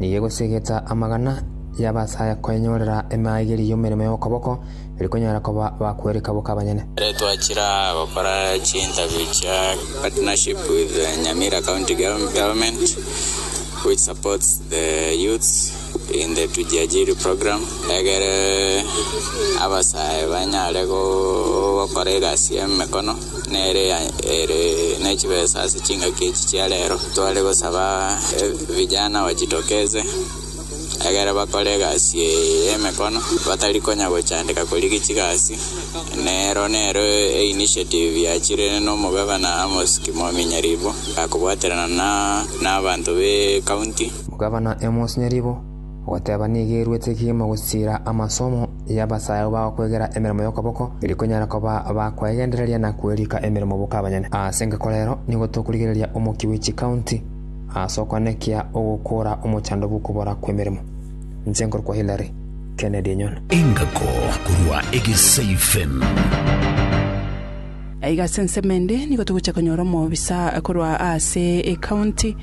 nigo egosegeta amagana y'abasaya kwenyorera emaigerio y'emeremo y'okoboko, eri konyara koba bakwereka boka abanyene. Ekero twachira gokora chinterview chia partnership with the Nyamira County Government which supports the youths in the Tujiajiri Program egere abasaya banyare gokora egasi y'emekono. nere ere ne chibesa ase chingaki echi chia rero. Tware gosaba vijana bajitokeze egere bakore egasi eye y'emekono batari konya gochandeka korigia chigasi. Nero nero e initiative yachire n'omogabana Amos Kimoa Nyaribo, akobwaterana na abanto b'ecounty. Omogabana Amos Nyaribo. Ogoteba nigo eruete kegima gosiira amasomo y'abasayabu bagokwegera emeremo y'okoboko, eri konyara koba bakwegendereria na kwerika emeremo boka abanyene. Ase engaki korero nigo tokorigereria omokia bwe chikaunti ase okonekia ogokora omochando bw'okobora kw'emeremo. Inche nkorokwa Hillary Kennedy Enyono. Engako korwa Egesaifem. Aiga ase ensemo ende nigo togocha konyora omobisa korwa ase ecounty.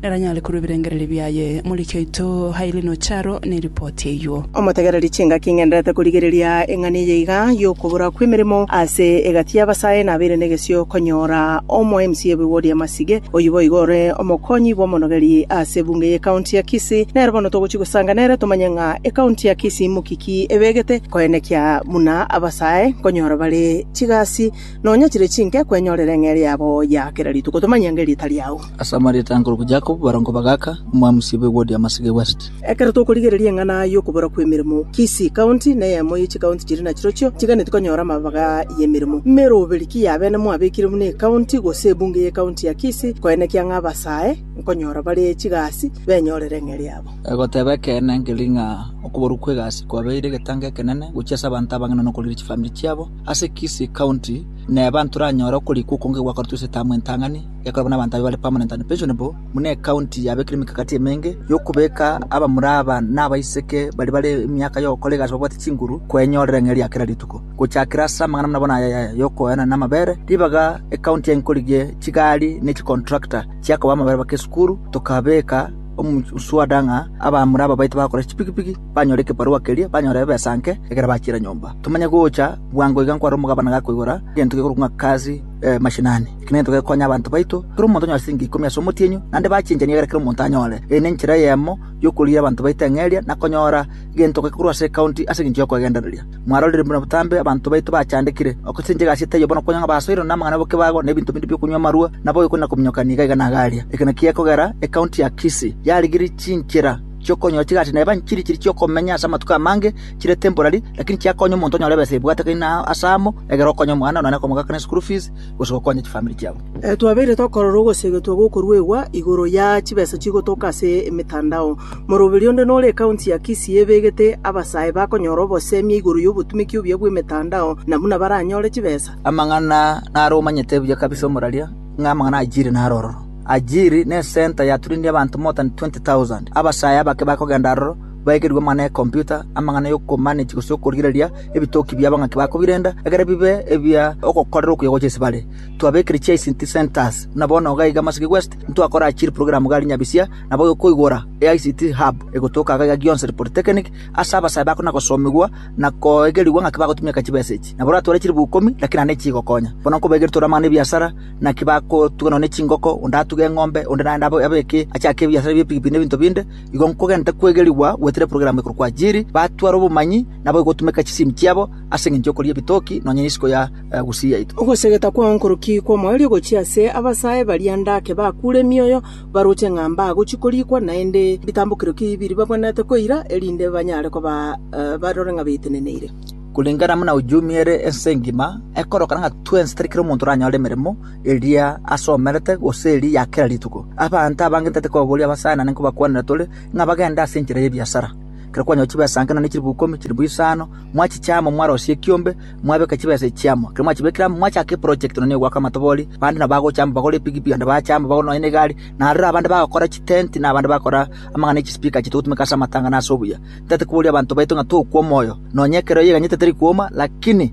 neranyare korua ebirengererio biaye. Moriki oito Hailey Nocharo neripoti eyuo. Omotegereri chingaki ng'enderete korigereria eng'ana eye iga y'okobora kw'emeremo ase egati y'abasae nabeire negesio konyora omo MC obe wodi ya Masige, oyio boigo ore omokonyi bw'omonogeri ase ebunge y'ecounty ya Kisii. Nere bono togochia gosanga nere tomanye ng'a ecounty ya Kisii inmoki ki ebegete koenekia buna abasae nkonyora bare chigasi nonya chire chinke kwenyorera eng'eria yabo ya kera rituko. Tomanye ng'eria etari agwo. Ase amarieta akorokwa Jakobo, barongo ba Gaka, omwami Siba ewodi y'amasege e West. Ekero tokorigereria eng'ana y'okobora kw'emeremo, Kisii County neyemo ye chikaunti chiria nachirochio chiganeti konyora amabaga y'emeremo. Meroberi ki y'abene mwabekire buna ekaunti gose ebunge y'ekaunti ya Kisii koenekia ng'a abasae nkonyora bare chigasi benyorere eng'eri yabo. Egoteba ekeene nkeri ng'a okuborwa kw'egasi kwabeire egetango ekenene gochia ase abanto abang'ina nokorigia chifamiri chiabo. Ase Kisii County neba ntoranyore okorikwa okonge gwakoretwe ase etamu entang'ani. Yakobo buna abanto abe bare permanent and pensionable buna ecounty yabekire emekakati emenge y'okobeka abamura aba na abaiseke baria bare emiaka y'ogokora egasi babwate chinguru kwenyorera eng'eria ya kera rituko. Gochakera ase amang'ana buna bono aya ya y'okoenana n'amabere, ribaga ecounty yankorigie chigari ne chicontractor chia koba amabere bake esukuru, tokabeka omuswada ng'a abamura aba baito bagokora chipikipiki banyore ekebarua keria banyore ebesa nke ekero bachira nyomba. Tomanye gocha bwango iga nkware omogabane gakoigora egento gekorokwa ng'a kazi mashinani. Kera ntoke gokonya abanto baito, kera omonto onyore siringi ikomi ase omotienyi, naende bachenchanie egere kera omonto anyore. Eye nenchera eyemo y'okorigia abanto baito eng'eria, na konyora egentoke korwa ase ekaunti ase engencho y'okoegendereria. Mwarorire buna botambe abanto baito bachandekire, ogosesenchia egasieti eyio bono konya ng'a basoirwe namang'ana ya bokebago, na ebinto binde bi'okonywa amarua, na boyokoni na kominyokania iga iga na igaria. Eke nakio gekogera ekaunti ya Kisii yarigirie chinchera chi'okonyora chigasi na ebanchiri chiria chi'okomenya ase amatuko amange chire temporary, lakini chiakonya omonto onyore ebesa ebwate kaina ase amo egere okonye omwana, nonya na komogaka ne school fees, gose gokonya chifamiri chiabo. Twabeire tokorora ogoseegetwa gokoruegwa igoro ya chibesa chigotoka ase emetandao. Moroberi onde nore ekaunti ya Kisii ebegete abasae bakonyora obosemia igoro y'obotumeki obuya bw'emetandao na buna baranyore chibesa. Amang'ana naro omanyete buya kabisa omoraria ng'a amang'ana Ajiri naro ororo. Ajiri ne center yaturinire abanto more than 20,000. Abasae abake bakogenda aroro. baekerigwe amang'ana ya ekomputa, amang'ana y'okomanage gose okorigereria ebitoki bia abang'aki ba kobirenda, ekero bibe ebia ogokorera okuya gocha ase bare. Twabekire chi ICT centres, buna bono iga iga Maseke West, ntwakora chiri program gari nyabisia, nabo okoigora e ICT hub egotoka iga iga gionsi ri polytechnic, ase abasae bako na gosomigwa, na koegerigwa ng'aki bagotumieka chibesa echi. Nabo oratware chiribu ikomi, lakini naende chigokonya. Bono nkobaekeria tore amang'ana ebiasara, naki bakotuga nonya ne chingoko, onde atuge eng'ombe, onde naende abe abeke achake ebiasara bie pigipigi na ebinto binde, Igo nkogenda kwegerigwa gwetire program ekorokwa Ajiri, batware obomanyi nabo igotumeka chisimi chiabo ase engencho y'okoria ebitoki nonya isiko ya Gusii yaito. Ogosegeta kwao nkoroki kw'omoerio gochia ase abasae baria ndake bakuure emioyo, baroche ng'a mbagochia korikwa, naende bitambokero ki biria babwenerete koira, erinde banyare koba barore ng'a beteneneire. Kulingana buna uchumi ere ense engima, ekorokana ng'a twensi tari kera omonto oranyore emeremo, eria asomerete, gose eria ya kera rituko. Abanto abange ntaete kobaboria abasaanane nkobakwanera tore, ng'a bagende ase enchera y'ebiasara. Ekero kwanyorwa chibesa nke naende chilifu ikomi, chilifu isano, mwachichia amo, mwarosia ekiombe, mwabeka chibesa echi amo. Ekero mwachibekire amo, mwachaka eprojekti nonya ya ogoaka amatobori, bande nabo bagocha amo bagore epikipiki, bande baache amo bagore nonya negari, na aroro abande bagokora chitenti, na abande bagokora amang'ana ya chispika ache togotumeka ase amatanga na ase obuya. Ntaete koboria abanto baito ng'a tokwa omoyo, nonya ekero yeganyete teri kwoma, lakini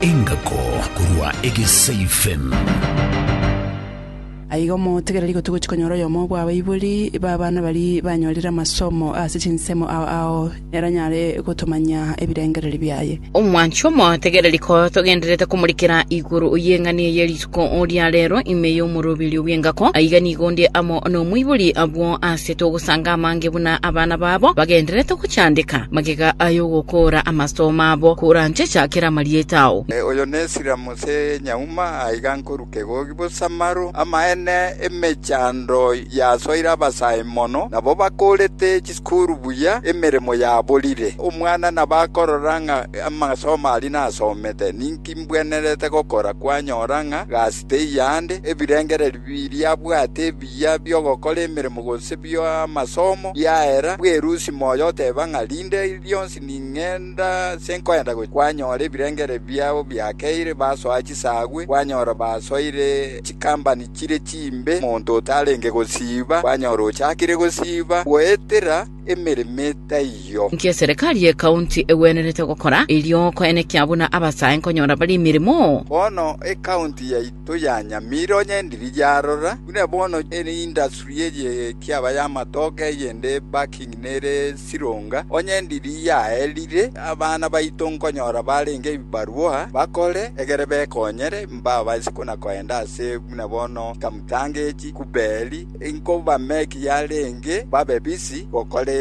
Engako korwa Egeseifen. Aiga omotegereri igo togochi konyora oyomo bw'abaibori b'abana bari banyorire amasomo ase chinsemo ao ao ere anyare gotomanyia ebirengereri biaye. Omwanchi omotegereri ko togendererete komorikera igoro y'eng'ani eye Ko oria rero ime y'omoroberio bw'engako, aiga nigo onde amo nomoibori. Abwo aase togosanga amange buna abana babo bagendererete gochandeka magega ay'ogokoora amasitoma abo, koranchecha kera amarieta ao. Oyo nesira Mose nyauma aiga nkoruka egogi bosa maro. Amaene emechando yasoire abasae mono, nabo bakorete chisukuru buya, emeremo yaborire. Omwana nabakorora ng'a amasoma aria nasomete ninki? Imbwenerete gokora kwanyora ng'a gasi teiyo aande, ebirengererio biriabwate ebiya bi'ogokora emeremo gose bi'amasomo biaera, bwerusia moyo oteba ng'a rinde rionsi ning'enda ase nkoenda gochia, kwanyora ebirengererio biabo biakeire, basoa chisaagwe, kwanyora basoire chikambani chire chimbe, monto otarenge gosiiba, kwanyora ochakire gosiiba, goetera emeremo etaiyo. Inki eserekari y'ekaunti egwenerete gokora erio koenekia buna abasae nkonyora bare emeremo? Bono ekaunti yaito ya Nyamira onye endiri yarora buna bono ere industry eye ekiaba y'amatoke eyende backing nere sironga, onye endiri yaerire abana baito nkonyora barenge ebibarua bakore egere bekonyere mbabase kona koenda ase buna bono Kamutanga echi, Kuberi, Inkobameki yarenge babe bisi gokora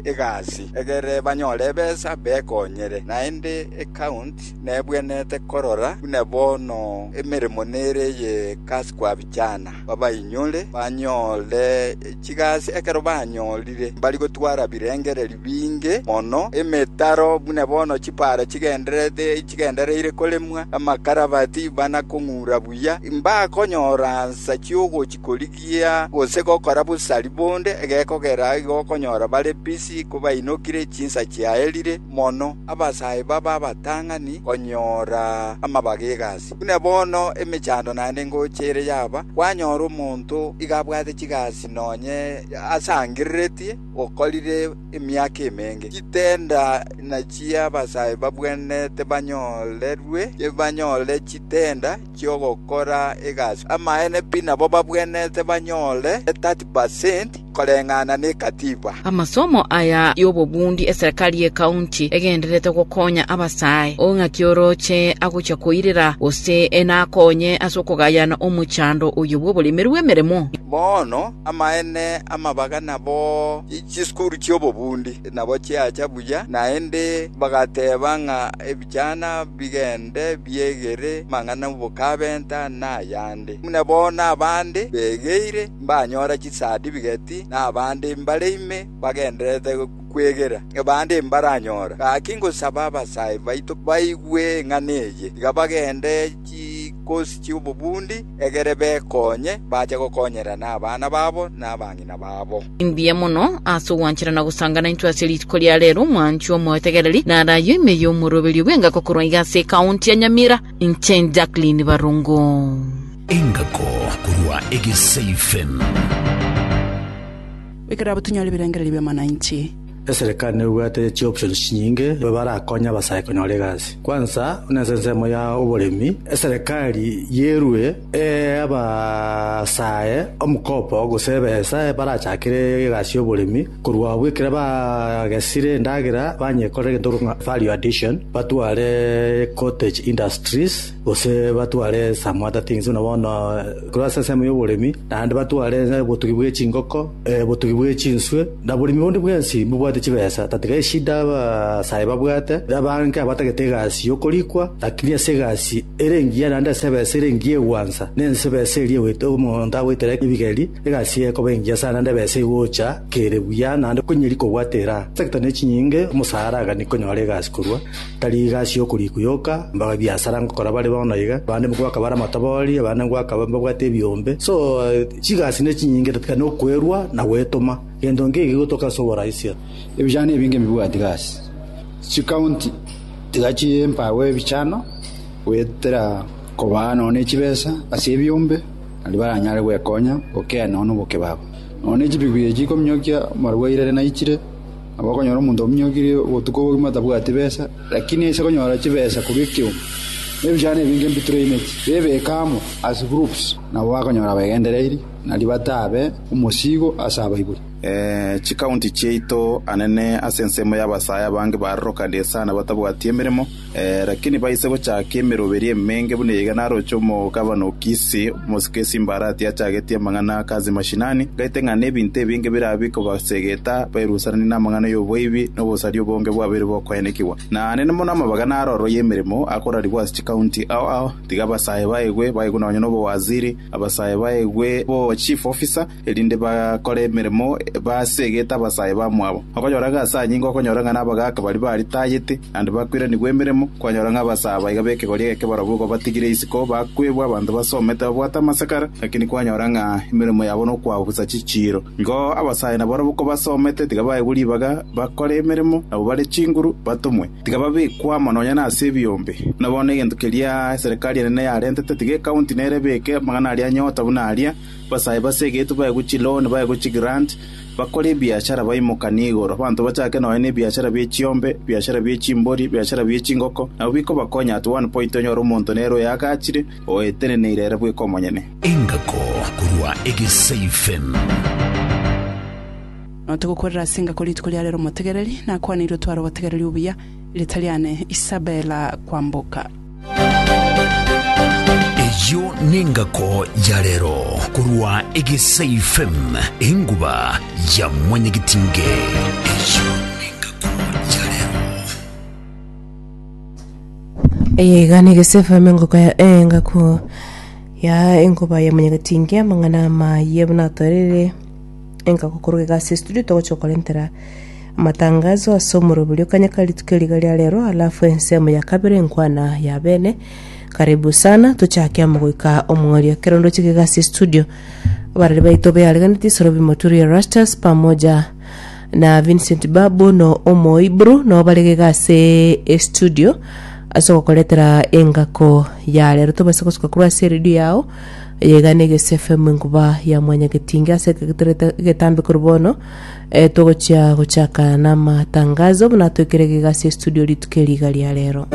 egasi, egere banyore ebesa bekonyere. Naende ekaunti nebwenete korora buna bono emeremo nere eye kasi kwabichana, babainyore banyore chigasi ekero banyorire. Mbari gotwara birengererio binge mono, emetaro buna bono chipaara chigendererete chigendereire koremwa, amakarabati bana kong'ura buya, mbakonyora nsa chiogochi. korigia gose gokora bosari bonde, egekogera igo okonyora bare bisi kobainokire chinsa chiaerire mono, abasae babe abatang'ani konyora amabaga egasi. Buna bono emechando naende ngocha ere yaba, kwanyora omonto iga abwate chigasi nonye asangereretie, okorire emiaka emenge. Chitenda nachio abasae babwenerete banyorerwe, tibanyore chitenda. chi'ogokora egasi. Amaene pi nabo babwenerete banyore 30% koreng'ana nekatiba. Amasomo aya y'obobundi eserekari y'ekaunti egendererete gokonya abasae, ong'aki oroche agochia koirera gose nakonye ase okogayana omochando oyo bw'oboremeri bw'emeremo. Bono amaene amabaga nabo chisukuru chi'obobundi nabo chiacha buya, naende bagateba ng'a. Chiana bigende biegere mang'ana 'obokabenta na ayande, buna bono abande begeire mbanyora chisadifiketi, na abande mbare ime bagendererete kwegera, abande mbaranyora. Gaki ngosaba abasae baito baigwe eng'ana eye, tiga bagende chikosi chi'obobundi, egere bekonye, bache gokonyereria nabana babo na abang'ina babo. Mbuya mono ase ogwanchera na gosangana intwe ase rituko ria rero, mwanchwa omoetegereri, na araaywo ime y'omoroberio bw'engako korwa iga ase ekaunti ya Nyamira, inche Jacqueline Barongo. Engako korwa Egesaifen. Ekero abo tunyore ebirengererio bi'amananchi. Eserekari nebwate chioptions chinyinge barakonye abasae konyora egasi. Kwansa, buna ense ensemo ya oboremi, eserekari yerue ee abasae omokopo gose ebesa barachakere egasi y'oboremi korwa abwo ekero bagesire endagera banyekorera egento ekero value addition batware cottage industries gose batware esamwata ting'inso na bono korwa ase ensemo y'oboremi, naende batware obotugi bwe chingoko, obotugi bwe chinswe, na oboremi bonde bwensi mbobwate chibesa. Tatiga eshida abasae babwate, abange abatagete egasi y'okorikwa, lakini ase egasi ere engiya naende ase ebesa ere engiya egwansa, na ense ebesa eria egoitera omonto agoitera ebigeri, egasi eye ekoba engiya sana naende ebesa egocha kere buya naende konyeria kobwata eraa. Sector ne chinyinge, omosaara agani konyora egasi korwa. Tari igasi y'okorikwa yoka, mbaga biasara ngokora bare bono iga, abande ngoaka bare amatabori, abande ngoaka mbabwate ebiombe. So, chigasi ne chinyinge tiga nokoerwa na gwetoma. Gento nge ege gotoka ase oboraisia. Ebichano ebinge mbibwati gasi, chikaunti tiga chimpago ebichano goetera kobaa nonya ne chibesa ase ebiombe naende baranyare gwekonya gokenda nonya na obokebabo. Nonya ne chibigwi echi chikominyokia amarwaire naichire. Nabo okonyora omonto ominyokirie obotuko obogima tabwati besa, lakini ase konyora chibesa korwa ekeoma, na ebichano ebinge mbitoraineti, bebeke amo as groups, nabo bakonyora begendereirie, na ribato abe omosiigo ase abaibori. Chikaunti chiaito anene ase ensemo y'abasaae abange barorokanie sana batabwati emeremo, Lakini baise gochaaka emeroberio emenge buna eyeiga naroche omogabana o Kisi, omosike o Simbarati, achagetie amang'ana ake ase mashinani, ngaete ng'a nebinto ebinge birabe bikobasegeta bairusananie namang'ana y'oboibi na obosaria obonge bwabeire bokoenekigwa. Naende mono amabaga naro aroro y'emeremo akorarigwa ase chikaunti ao ao, tiga abasae baegwe baegwe nonye nobowaziri, abasae baegwe bochief officer, erinde bakore emeremo basegete abasae bamwabo. Okonyora ng'a ase anyinga okonyora ng'a nabagaaka baria baritayete, naende bakw'eranigwe emeremo, kwanyora ng'a abasae abaiga b'ekegori egeke barabwo igo batigire isiko, bakwebwa abanto basomete babwate amasakara, lakini kwanyora ng'a emeremo yabo nokwabusa chichiiro. Igo abasae nabarabwo kobasomete tiga baegwe ribaga, bakore emeremo, nabo bare chinguru, batomwe. Tiga babekwe amo nonya nase ebiombe. Buna bono egento keria Eserekari enene yarentete, tiga ekaunti nere ebeke amang'ana aria nyota buna aria, Basae base egeito baye gochia Loni, baye gochia Grant, bakore ebiachara baimokanie igoro. Abanto bachake nonya nebiachara bie chiombe, ebiachara bie chimbori, ebiachara bie chingoko, nabo bikobakonya at one point onyore omonto nere oyagachire, oeteneneire ere bweka omonyene. Engako korwa Egesaifen. Nonya togokwerera ase engako rituko ria rero omotegereri, nakwaneirwe tware obotegereri obuya, riita riane Isabella Kwamboka. Eyio nengako ya rero korwa Egesaifem, enguba ya mwanyagetinge. Eyio nengako ya rero. Eye iga negesefeme engoko ya engako ya enkoba ya mwanyagetinge amang'ana amaye buna atorire Enka gokoroka egasi ya studio togochia gokorentera amatangazo ase omoroberio kanya ka rituko eri riga ria rero alafu ensemo ya kabere nkwana ya bene karibu sana tochake amo goika omong'ori ekero ndochika egasi ya studio abarari baito beareganeti sorobi moturi erastus pamoja na vincent babu no omoiburu no barege egasi e studio ase gokoretera engako ya rero tobase gosuka korwa ase eredio yao Yegana egese FM enkuba ya mwanyagetinge ase ekegeterete egetambe korwa bono eh, togochia gochaka namatangazo buna twekere gigasi studio rituko eriga ria rero